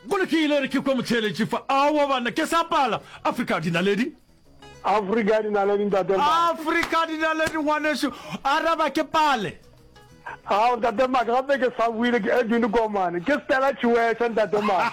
Go lokile e re ke kwe motheeletši fa. Aowa banna, ke sa pala. Afrika dinaledi. Afrika dinaledi ntate Maka. Afrika dinaledi ngwanešu, araba ke pale. Ao ntate Maka, gape ke sa buile ke Edwin Komane. Ke Stella Chiweshe ntate Maka.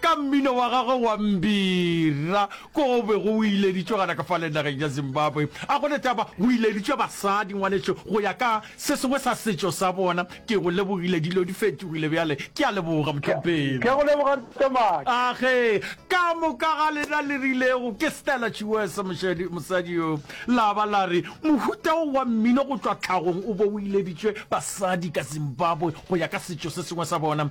ka mmino wa gagwe wa Mbira ko go be go ileditšwe gana ka fa le nageng ya Zimbabwe. A gona taba go ileditšwe basadi ngwanešu go ya ka se sengwe sa setšo sa bona. Ke go lebogile dilo di fetogile bjale. Ke a leboga Motlompelo. Ke a go leboga Ntomadi. A ge ka moka ga lena le rilego ke Stella Chiwesa mošadi mosadi yo la ba la re mohuta wo wa mmino go tšwa tlhagong o be o ileditšwe basadi ka Zimbabwe go ya ka setšo se sengwe sa bona.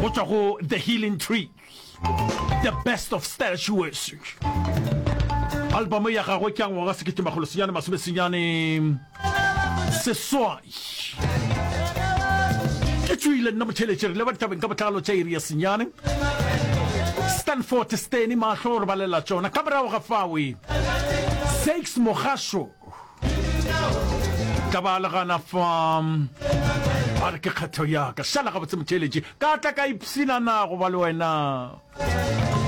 go tšwa go the healing tree the best of style shoes albamo ya gagwe ke ya ngwaga sekete magolo senyane masome senyane seswai ke tswile nna motheletše re le ba ditabeng ka botlalo tša iri ya senyane stanford steny mahlo gore ba lela tsona ka morago ga fawe sakes mogasho ka ba le gana fa a re ke kgetho yaka šala gabotse motheeletše ka tla ka ipsina na go ba le wena